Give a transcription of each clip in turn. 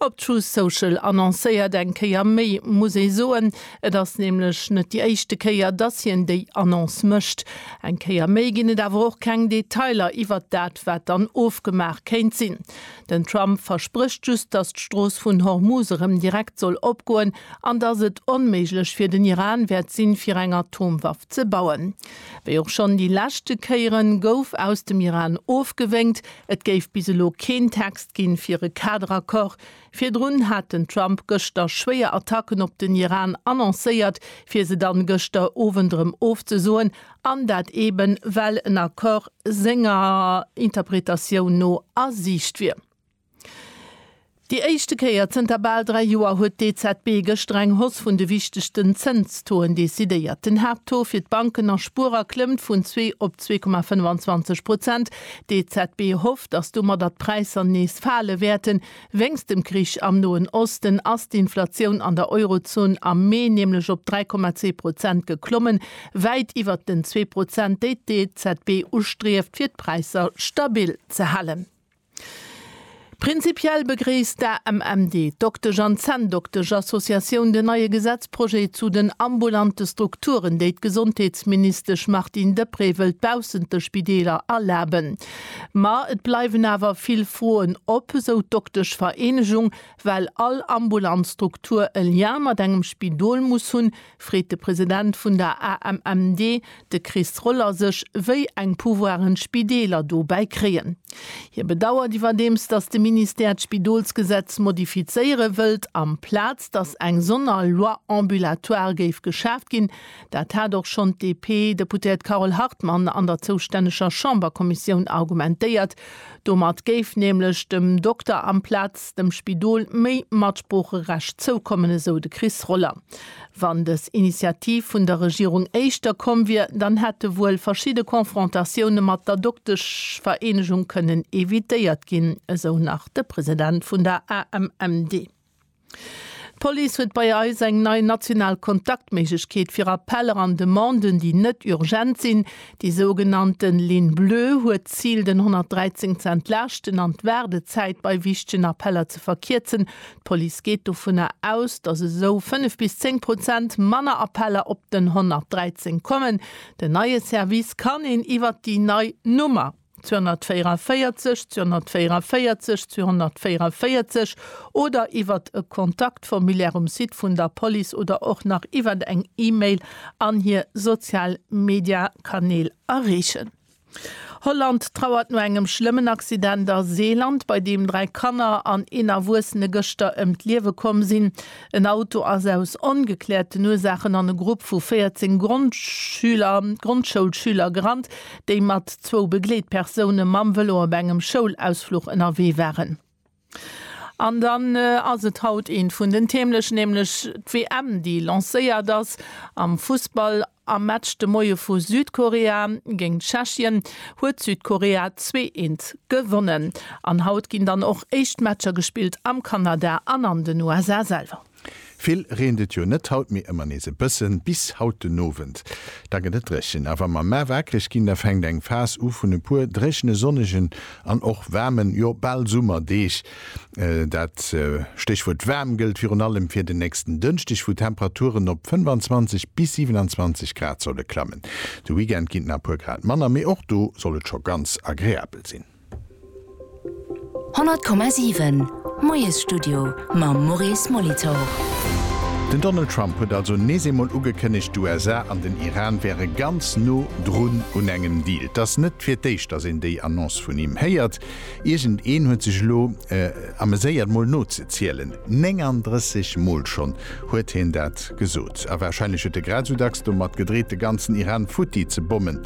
Op Truth Social annoncéiert eng Kéier méi, muss ee soen. Et ass nämlech net déi éischte Kéier, dass hien déi Annonce mécht. Eng Kéier méi ginn et awer och keng Detailer iwwert dat, wat dann ofgemaach kéint sinn. Den Trump versprécht just, dass d'Strooss vun Hormuz erëm direkt soll opgoen an dass et onméiglech fir den Iran wäert sinn, fir eng Atomwaff ze bauen. Wéi och schonn déi leschte Kéieren, gouf aus dem Iran ofgewénkt. Et géif bis elo keen Text ginn, fir e Kaderaccord. Virdrun hat den Trump gëschter schwéier Attacken op den Iran annoncéiert, fir se dann gëschter Owend erëm ofzesoen, an dat eben, well en Accord senger Interpretatioun no a Siicht wier. Déi éischte Kéier zënter bal dräi Joer huet d'EZB gëschter eng Hausse vun de wichtegsten Zënstaux-en decidéiert. Den Haapttaux fir d'Banken a Spuerer klëmmt vun zwee op zwee Komma 25 Prozent. D'EZB hofft, datt domadder d'Präisser nees fale wäerten. Wéinst dem Krich am Noen Osten ass d'Inflatioun an der Eurozon am Mee nämlech op 3,2 Prozent geklommen, wäit iwwert den zwee Prozent, déi d'EZB ustrieft, fir d'Präisser stabil ze halen. Prinzipiell begréisst d'AMMD, d'Doktesch an Zänndoktesch Associatioun, den neie Gesetzprojet zu den ambulante Strukturen, déi d'Gesondheetsministesch Martine Deprez wëllt baussent de Spideeler erlaben. Ma et bleiwen awer vill Froen op, esou d'Doktesch Vereenegung, well all ambulant Struktur e Lien mat engem Spidol muss hunn, Freet de President vun der AMMD, de Chris Roller sech, wéi eng Pouvoiren d'Spideeler dobäi kréien. Hie bedauert iwwerdeems, datt de Ministère d'Spidolsgesetz modifizéiere wëllt, amplaz datt eng sonner Loi ambulatoire géif geschaaft ginn. Dat hat och schonn d'DP-Deputéiert Carole Hartmann an der zoustänneger Chamberkommissioun argumentéiert. Domat géif nämlech dem Dokter amplaz dem Spidol méi Matsproocherecht zoukommen, esou de Chris Roller. Wann dës Initiativ vun der Regierung éischter komm wier, dann hätte wuel verschidde Confrontatioune mat der Dokteschvereenegung kënnen evitéiert ginn, esou nach de President vun der AMMD. D'Police huet bei eis eng nei national Kontaktméiglechkeet fir Appeller an Demanden, déi net urgent sinn. Déi sougenannte Ligne Bleue huet d'Zil, den 113 ze entlaaschten an d'Waardezäit bei wichtegen Appeller ze verkierzen. D'Police geet dovunner aus, dass esou 5 bis 10 Prozent manner Appeller op den 113 kommen. Den neie Service kann een iwwert déi nei Nummer. 244 244 244 oder iwwert e Kontaktformulaire um Site vun der Police oder och nach iwwert eng E-Mail an hir sozial Media-Kanäl erreechen. Holland trauert no engem schlëmmen Accident a Seeland, bei deem dräi Kanner an een Erwuessene gëschter ëm d'Liewe komm sinn. En Auto ass aus ongekläerten Ursaachen an e Grupp vu 14 Grondschüler, Grondschoulschüler gerannt, déi mat zwou Begleetpersoune mam Vëlo op engem Schoulausfluch ënnerwee waren. An dann ass et haut eent vun den Themen, nämlech d'WM, déi lancéiert ass am Fussball. Am Match de Moie vu Südkorea géint Tschechien huet Südkorea zwee eent gewonnen. An haut ginn dann och éischt Matcher gespillt am Kanada an an den USA selwer. Vill reent et jo net haut, mee ëmmer nees e bëssen. Bis haut den Owend, da gëtt et dréchen. A wa mer mar waakreg ginn, da fänkt eng Phas u vun e puer dréchene, sonnegen an och waarmen, jo bal Summerdeeg. Dat Stéchwuert waarm gëllt virun allem fir den nächsten Dënschdeg, wou d'Temperaturen op 25 bis 27 Grad solle klammen. De Weekend ginn et nach e puer Grad manner, mee och do soll et scho ganz agreabel sinn. 100,7 Moiesstudio mam Maurice Molitor. Den Donald Trump huet also nees eemol ugekënnegt, d'USA an den Iran wäre ganz no drun un engem Deal. Et ass net fir d'éischt, datt een déi Annonce vun him héiert. Iergend een huet sech elo ameséiert mol nozezielen, 39 mol schonn huet hien dat gesot. A warscheinlech huet e grad esou dacks domat gedreet de ganzen Iran futti ze bommen.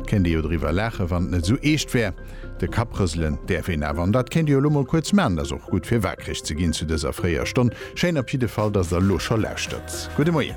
Et kéint ee jo driwwer laachen, wann et net esou eescht wär. De Kapp rëselen däerf een awer, an dat kéint Dir jo elo mol kuerz maachen, et ass och gutt fir waakreg ze ginn zu dëser fréier Stonn. Schéin op jidde Fall, datt Der elo scho lauschtert. Gudde Moien.